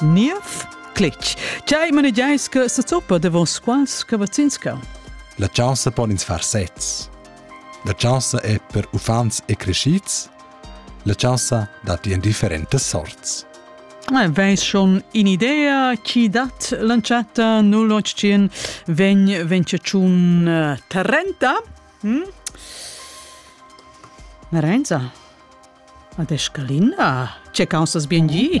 Niev clic. Tgei manegiais che sezuppa davon squals cavazzins cau? La chaussa pon ins far sez. La chaussa è per uffants e crescids. La chaussa dat in differentas sorts. Ah, Veis schon in idea chi dat lanciata 0800 vegn venciaciun eh, 30? Hm? Marenza, ad Escalinda, ce causas bien gi?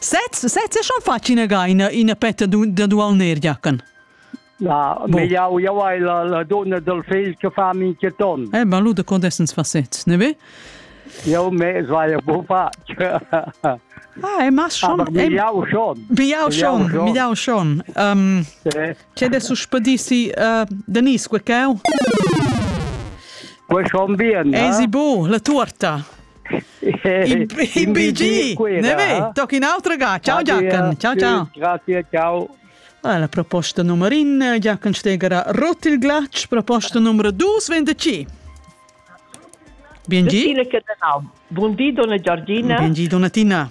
Sez, sez, schon fatg ina gaina, ina petta da dualner giacan. La bon. megliau jau hai la, la donna del fegl che fa min che ton. Eh, ma lu de condessens facets, ne ve? Jau me vai bu fatg. Ah, e ma schon. Aber miau schon. Miau schon, miau schon. Um, C'è adesso spedissi uh, Denise quel cau? Quel schon bien. Esi bu, la torta. In, in BG! Ne tocca un'altra ga. Ciao Giachen. Ciao ciao. Grazie, ciao. Ah, la proposta numero in, Giachen Steger rot il glatsch, proposta numero 225. Biengi. Buondì donna Giorgina. Biengi donatina.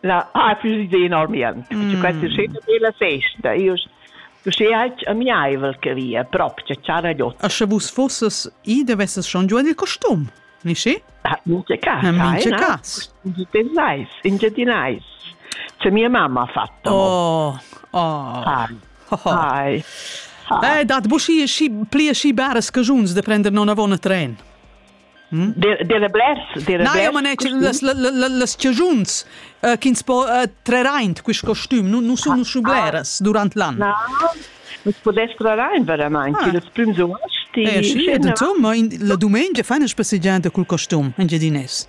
la ha plü idea normalmaing. Mm. Perche questa scena bella festa, io uschè alch amiaivel che via, proprio ciara gliot. A sche vus fosses i devesses schon giù il costum, nici? Ah, mince cas, mince cas. Pensais, ingedinais. Se mia mamma ha fatto. Oh, oh. Hi. Hi. Hi. Eh, dat bu schi schi pli schi bares cajuns de prender non avon a tren. Dera blers, dera blers. Na, io manegia las, las, las chiugiuns uh, ch'ins po uh, trer aint quist costüm, nu, nu sun ah, schubleras ah, durant l'an. Na, nus podess trar aint veramaint, ah. ils prüms uosti. Eh, sì, insomma, la dumengia fa una spassegianta col costüm, in Gedines.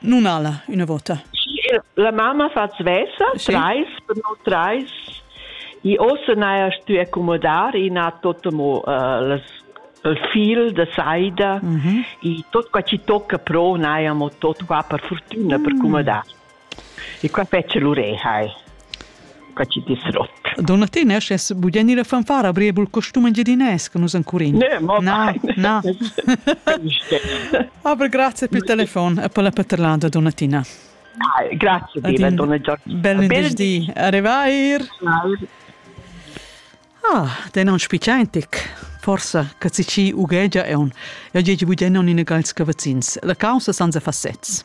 Non ala una vota. La mamma fa svesa, sì. trais per non trais. I ossa n'haja stuì accomodar in ha tot mo uh, las il fil da saida mm -hmm. e tot qua ci tocca pro n'haja mo tot qua per fortuna mm. per accomodar. E qua fece l'ureha. Quai chi dis rot. Donna Te naschess bugen ina fanfara breibel costum engiadinès che nus encurin. Ne, mo na, na. Aber grazie per il telefono e per la paterlada, donna Tina. Dai, grazie mille, donna Giorgina. Bel venerdì, arrivair. Ah, den on spicientic. Forsa che ci ughegia è un. Io gigi bugen non in gals cavazzins. La causa sanza fassets.